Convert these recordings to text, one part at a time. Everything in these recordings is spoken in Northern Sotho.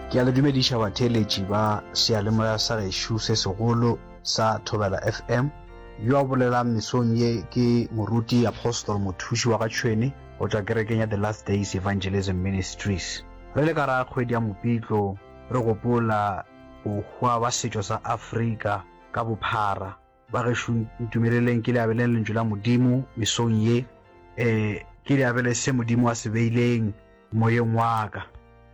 Ke a le dumediša batheeletši ba seyalemoya sa gešo se segolo sa Thobela FM. Yo a bolelang mesong ye ke moruti Apostle Mothuši wa Gatšhwene go tšwa kerekeng ya The Last Days Evangelism Ministries. Re le ka ra kgwedi ya Mopitlo re gopola bohwa ba setšo sa Afrika ka bophara. Ba gešo ntumeleleng ke le abele lentšu la Modimo mesong ye, e ke le abele se Modimo a se beileng moyeng wa ka.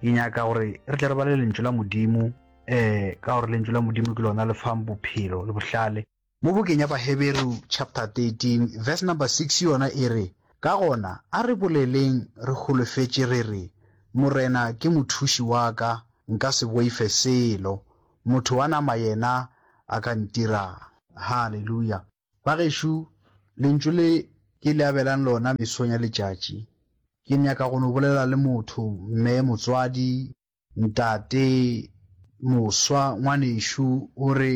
Ke nyaka gore re tle re bale lentšu la Modimo, e ka gore lentšu la Modimo ke lona le fang bophelo le bohlale. Mo bukeng ya Baheberu chapter 13 verse number 6 yona e re, Ka gona a re boleleng re holofetše re re, Morena ke mothuši wa ka, nka se boife selo. Motho wa nama yena a ka ntira'ng? Haleluya! Bagešo, Lentšu le ke le abelang lona mesong ya letšatši, ke nyaka go no bolela le motho, mme, motswadi, ntate, moswa, ngwanešu, o re,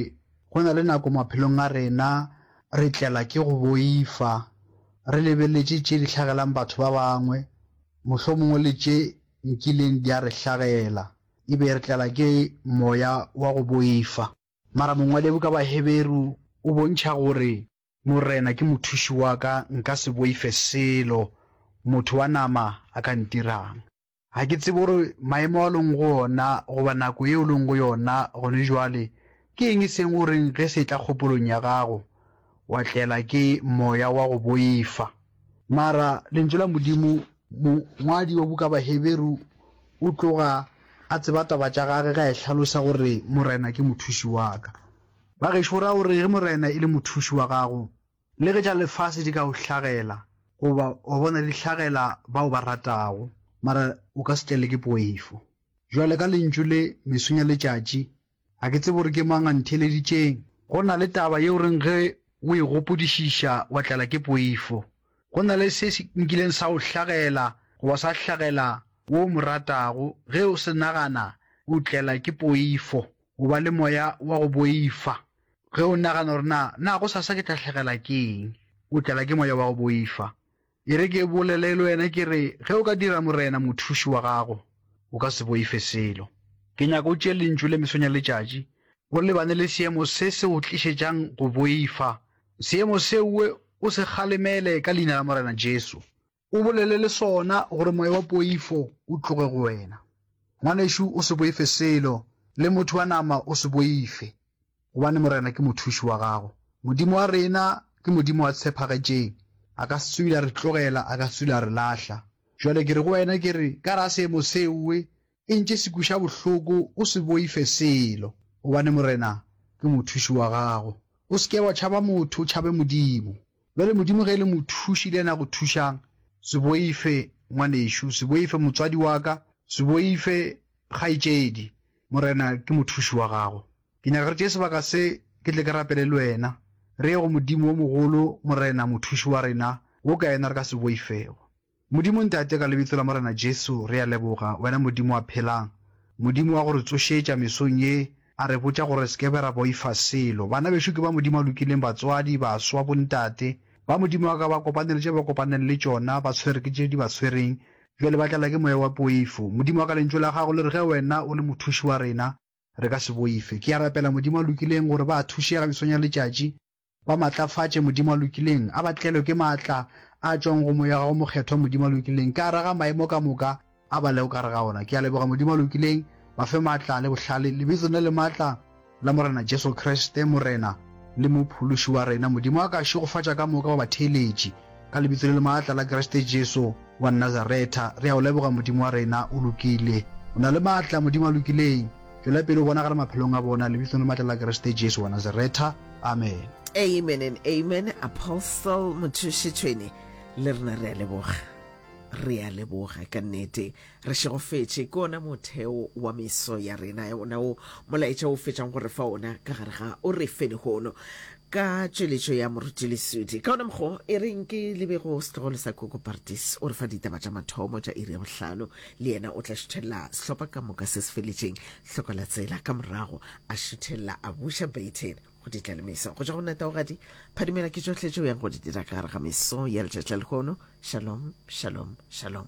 Go na le nako maphelong a rena re tlela ke go boifa, re lebeletše tše di hlagelang batho ba bangwe, mohlomongwe le tše nkileng di a re hlagela. e be e re tlala ke moya wa go boifa. Mara mongwadibuka wa Heberu o bontšha gore, Morena ke mothuši wa ka, nka se boife selo motho wa nama a ka ntirang. Ga ke tsebe gore maemo ao o leng go ona goba nako yeo o leng go yona gone bjale ke eng eseng gore ge se etla kgopolong ya gago wa tlela ke moya wa go boifa. Mara Lentšu la Modimo Mongwadi wa buka Baheberu o tloga a tseba taba tša gage ge a e hlalosa gore Morena ke mothuši wa ka. Ba gešo go raya gore ge Morena e le mothuši wa gago, le ge tša lefase di ka go hlagela goba wa bona di hlagela ba o ba ratago, mara o ka se tlele ke poifo. Bjale ka lentšu le, mesong ya letšatši Ga ke tsebe gore ke mang a ntheeleditšeng. Go na le taba yeo reng ge o e gopodišiša wa tlala ke poifo. Go na le se se nkileng sa go hlagela goba sa hlagela wo o mo ratago, ge o se nagana o tlela ke poifo, o ba le moya wa go boifa. Ge o nagana gore na, na gosasa ke tla hlagelwa ke eng, o tlala ke moya wa go boifa. E re ke bolele le wena ke re, ge o ka dira Morena mothuši wa gago, o ka se boife selo. Ke nyaka o tšee Lentšu le mesong ya letšatši, o lebane le seemo se se go tlišetšang go boifa. Seemo seo o se kgalemele ka Leina la Morena Jesu. O bolele le sona gore moya wa poifo o tloge go wena. Ngwanešu, o se boife selo, le motho wa nama o se boife. Gobane Morena ke mothuši wa gago. Modimo wa rena ke Modimo wa tshepagetšeng, a ka se tswile a re tlogela, a ka se tswile a re lahla. Bjale ke re go wena, ke re, ka gare ga seemo seoe, e ntše se kwiša bohloko, o se boife selo, gobane Morena ke mothuši wa gago. O se ke wa tšhaba motho, o tšhabe Modimo. Bjale Modimo ge e le mothuši le yena a go thušang, se boife, ngwanešu, se boife, motswadi wa ka, se boife, kgaetšedi, Morena ke mothuši wa gago. Ke nyaka re tšee sebaka se ke tle ke rapele le wena, re ye go Modimo wo mogolo, Morena, Mothuši wa rena, wo ka yena re ka se boifego. Modimo Ntate, ka Lebitso la Morena Jesu, re a leboga, wena Modimo a phelang, Modimo wa go re tsošetša mesong ye, a re botša gore re se ke be ra boifa selo. Bana bešo ke ba Modimo a lokileng, batswadi, baswa, bontate, ba Modimo wa ka ba kopane le tše ba kopaneng le tšona, ba tshwere ke tše di ba tshwereng, bjale ba tlala ke moya wa poifo. Modimo wa ka Lentšu la Gago le re ge wena o le Mothuši wa rena, re ka se boife. Ke a rapela, Modimo a lokileng, gore ba thuše ka mesong ya letšatši, ba matlafatše, Modimo a lokileng, a ba tlelwe ke maatla a a tšwago go Moya wa Gago Mokgethwa, Modimo a lokileng, ka gare ga maemo ka moka a ba lego ka gare ga ona. Ke a leboga, Modimo a lokileng, ba fe maatla le bohlale, Lebitsong le le maatla la Morena Jesu Kriste, Morena le Mophološi wa rena. Modimo a ka šegofatša ka moka wa batheeletši. Ka Lebitso le le maatla la Kriste Jesu wa Nazaretha, re a O leboga, Modimo wa rena. O lokile. O na le maatla, Modimo a lokileng. Tšwela pele o bonagale maphelong a bona, Lebitsong le maatla la Kriste Jesu wa Nazaretha. Amen. Amen and Amen, Apostle Mothušitšhwene. Le rena re a leboga. Re a leboga ka nnete. Re šegofetše ke ona motheo wa meso ya rena, ona wo molaetša o fetšang go re fa ona ka gare ga o re fe lehono ka tšweletšo ya moruti leswidi. Ka ona mokgo, e reng ke lebego setlogolo sa Koko Partis o re fa ditaba tša mathomo tša iri ya bohlano, le yena o tla šuthelela sehlopha ka moka se se feletšeng hloko la tsela, ka morago a šuthelela a buša Baton go di tla le meso. Go tšwa go nna Taogadi Phadimela ke tšohle tše o yang go di dira ka gare ga meso ya letšatši la lehono. Shalom, shalom, shalom.